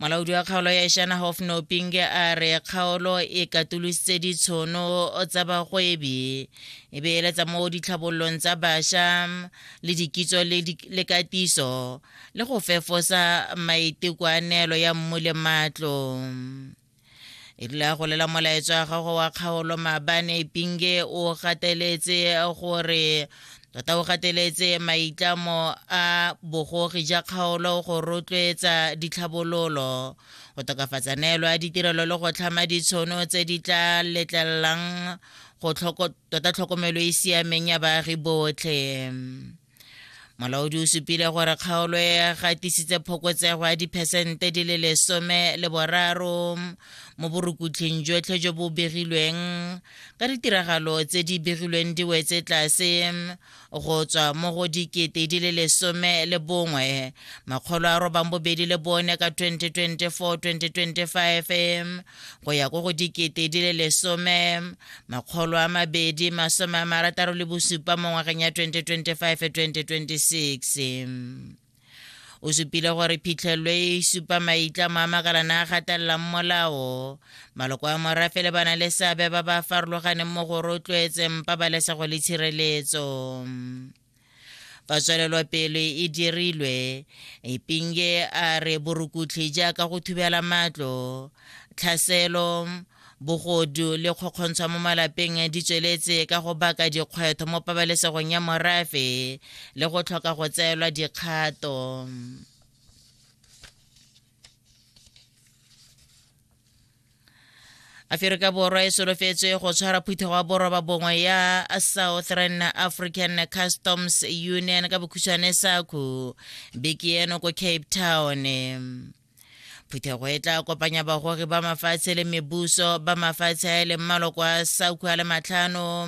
molaodi wa kgaolo ya ishana hofnoping a re kgaolo e katolositse ditshono tsa bagwebi e beeletsa mo ditlhabololong tsa bašwa le dikitso le katiso le go fefosa maitekoanelo ya mmu le matlo e rile a golela molaetso wa gago wa kgaolo maabane pinge o gateletse gore tota o gateletse maitlamo a bogogi ja kgaolo go rotloetsa ditlhabololo go tokafatsa neelo ya ditirelo le go tlhama ditshono tse di tla letlelelang go tota tlhokomelo e siameng ya baagi botlhe molaodi o supile gore kgaolo e gatisitse phokotsego ya diphesente di le lesome le boraro mo borukhutlhing jotlhe jo bo begilweng ka ditiragalo tse di begilweng di wetse tlase go tswa mo go dikete di le lesome le bongwe makgolo a robang bobedi le bone ka 2024-2025 go ya ko go dikete di le lesome makgolo a mabedi masome a marataro le bosupa mo ngwageng ya 2025-2026 o supile gore phitlhelelo e e supa maitlamo a makalana a gatelelang molao maloko a morafe le bana le seabe ba ba farologaneng mo go rotloetseng pabalesego le tshireletso Fa tswelelopele e dirilwe, Ipinge a re borukutlhi jaaka go thubela matlo, tlhaselo, bogodu le kgokgontshwa mo malapeng di tsweletse ka go baka dikgwetho mo pabalesegong ya morafe le go tlhoka go tseelwa dikgato. aferika borwa e solofetswe go tshwara phutha wa boroba bongwe ya southern african customs union ka bokhutshwane saku beke eno ko cape town phuthego e tla kopanya bagogi ba mafatshe le mebuso ba mafatshe a e leng maloko a saku a le matlhano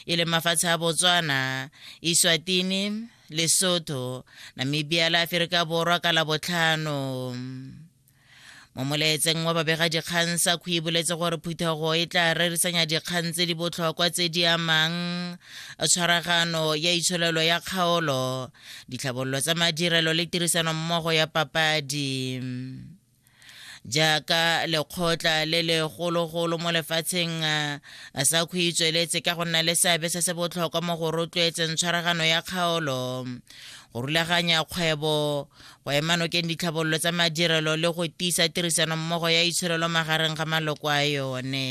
e leng mafatshe a botswana iswatini lesotho namibia le aferika borwa ka labotlhano mo molaetseng wa babegadikgang sa kgwi boletse gore phuthego e tla rerisanya dikgang tse di botlhokwa tse di amang tshwaragano ya itsholelo ya kgaolo ditlhabololo tsa madirelo le tirisano mmogo ya papadi jaaka lekgotla le legologolo mo lefatsheng sa kgwi tsweletse ka go nna le seabe se se botlhokwa mo go rotloetseng tshwaragano ya kgaolo go rulaganya kgwebo go ema nokeng ditlhabololo tsa madirelo le go tiisa tirisano mmogo ya itsholelo magareng ga maloko a yone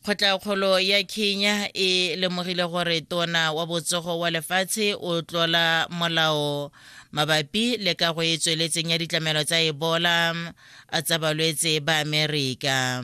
kgotlaakgolo ya kenya e lemogile gore tona wa botsogo wa lefatshe o tlola molao mabapi le ka go e tsweletseng ya ditlamelo tsa ebola tsa balwetse ba amerika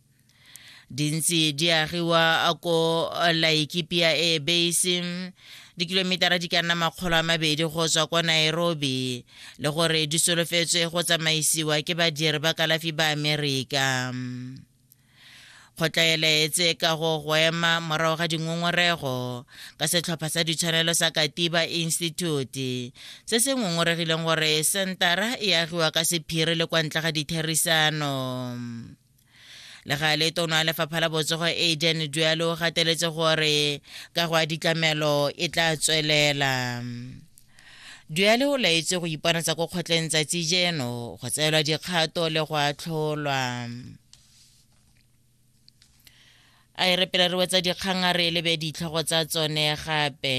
di ntse di agiwa ko laikipia air base dikilometara di ka nna makgolo a mabedi go tswa kwa nairobi le gore di solofetswe go tsamaisiwa ke badiri ba kalafi ba amerika kgotlaelaetse ka go go ema morago ga dingongorego ka setlhopha sa ditshwanelo sa katiba institute se se ngongoregileng gore sentara e agiwa ka sephiri le kwa ntle ga ditherisano le ga le tona lefapha la botsogo aden dualo o gateletse gore ka go a ditlamelo e tla tswelela duale o laetse go iponatsa ko kgotleng tsatsi jeno go tseelwa dikgato le go atlholwa a e re pele re wetsa dikgang a re lebe ditlhogo tsa tsone gape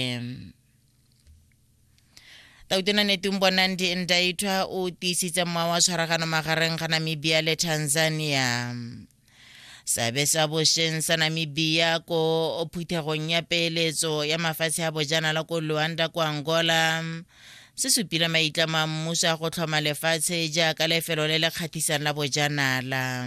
tautona netong bonandi ndaithwa o tiisitse mmoa wa tshwaragano magareng ga namibia le tanzania seabe sa bošeng sa namibia ko phuthegong ya peeletso ya mafatshe a bojanala ko luanda ko angola se supile maitlamo a mmuso a go tlhoma lefatshe jaaka lefelo le le kgatlhisang la bojanala